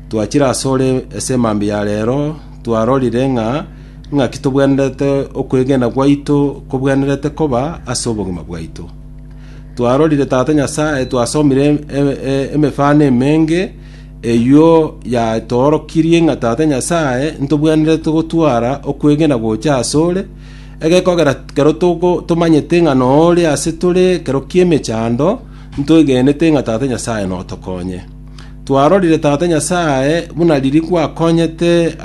Twachire asore ase mambia ya reero, twarorire ng'a ing'aki tobwenerete okwegena gwaito kobwenerete koba ase obogima bwaito. Twarorire Tata Nyasae, twasomire emefano emenge, eyio yatoorokirie ng'a Tata Nyasae ntobwenerete gotwara okwegena gocha asore, egekogera kero tomanyete ng'a nore ase tore kero ki'emechando, Ntoigenete ng'a Tata Nyasae notokonye. Twarorire Tata Nyasae buna riria gwakonyete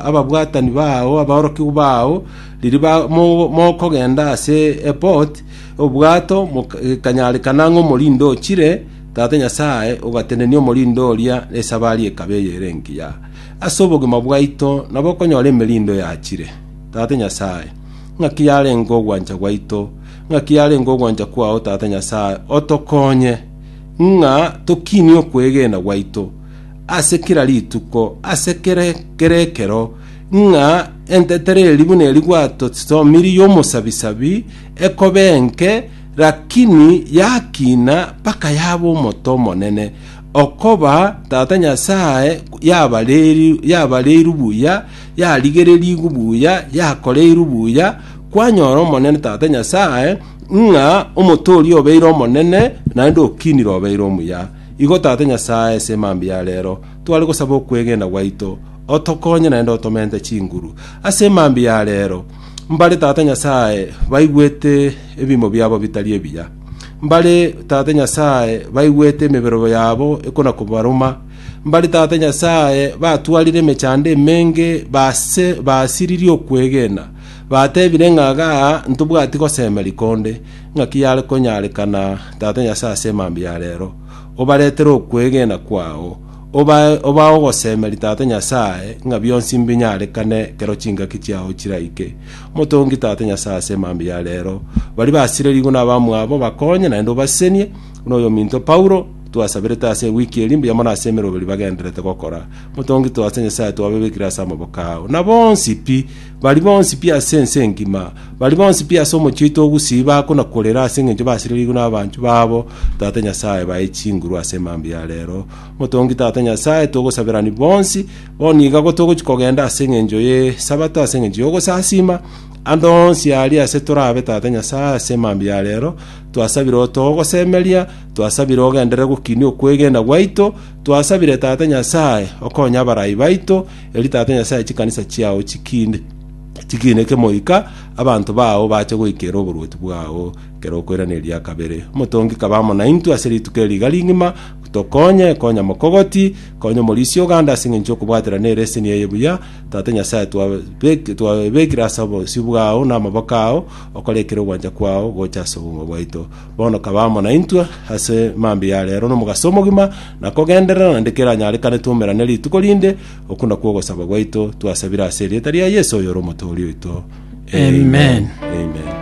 ababwatani bao, aborokigwa bao, riria mokogenda ase Epot, obwato, gekanyarekana ng'a omorindi ochire, Tata Nyasae ogatenenia omorindi oria nesabari ekaba eye ere engiya. Ase obogima bwaito nabo okonyora emerindo yachire, Tata Nyasae, ng'aki yarenge ogwancha gwaito, Ng'aki yarenge ogwancha kwao, Tata Nyasae, otokonye ng'a tokinie okwegena gwaito ase kera rituko, ase kere kere ekero, ng'a entetero eri buna eri gwatosomirie y'omosabisabi ekoba enke, lakini yakina mpaka yaba omote omonene, okoba, Tata Nyasae, yabareri- yabareirwe buya, yarigererigwe buya, yakoreirwe buya, Kwanyora Omonene Tata Nyasae, ng'a omotooria obeire omonene, naende okinire obeire omuya. Igo Tata Nyasae, ase emambia ya reero, tware gosaba okwegena gwaito, otokonye naende otomente chinguru. Ase emambia ya reero, mbare Tata Nyasae baigwete ebiimo biabo bitari ebiya. Mbare Tata Nyasae baigwete emeberobo yabo ekona kobaruma. Mbare Tata Nyasae batwarire emechando emenge, base, basiririe okwegena. Batebire ng'a iga ntobwati gosemeria konde, ng'aki yare konyarekana, Tata Nyasae, ase emambia ya reero, obaretere okwegena kwao, obae obae ogosemeria Tata Nyasae, ng'a bionsi mbinyarekane ekero chingaki chiao chiraike. Motongi Tata Nyasae ase emambia ya reero, baria basirerigwe nabamwabo obakonye, naende obasesenie, buna oyominto Paulo twasaberete ase ewiki eri mbuya mono ase emeroberi bagendererete gokora. Motongi Tata Nyasae twababekire ase amaboko ao, na bonsi pi, Baria bonsi pi ase ense engima, baria bonsi pi ase omochie oito o Gusii bagakuna korera ase engencho basirereirwe nabanchu babo Tata Nyasae baye chinguru ase emambia ya rero. Motongi Tata Nyasae, togosaberani bonsi, bono iga go togochia kogenda ase engencho ye Sabato ase engencho y'ogosasima, ande onsi aria ase torabe Tata Nyasae ase emambia ya rero, twasabire otogosemeria, twasabire ogenderere gokinia okwegena gwaito, twasabire Tata Nyasae okonye abarai baito, Erio Tata Nyasae a chikanisa chiao chikinde, chikineke moika abanto bao bache goikera oborwoti bwao ekero okoiraneria eria kabere. Omotongi kaba amo naintwe ase rituko eri riga rigima, tokonye, konya mokogoti, konya omorisia oganda ase engencho y'okobwaterana ereseni eye buya, Tata Nyasae, twabek- twabekire ase obosio bwao na amaboko ao, okore ekero ogwancha kwao gocha ase obong'u bwaito. Bono kaba amo naintwe ase mambia ya reero nomogaso omogima, na kogenderera naende keranyarekane twoumerane rituko rinde, okwo nakwo ogosaba gwaito twasabire ase erieta ria Yeso oyore Omotooria oito. Amen. Amen.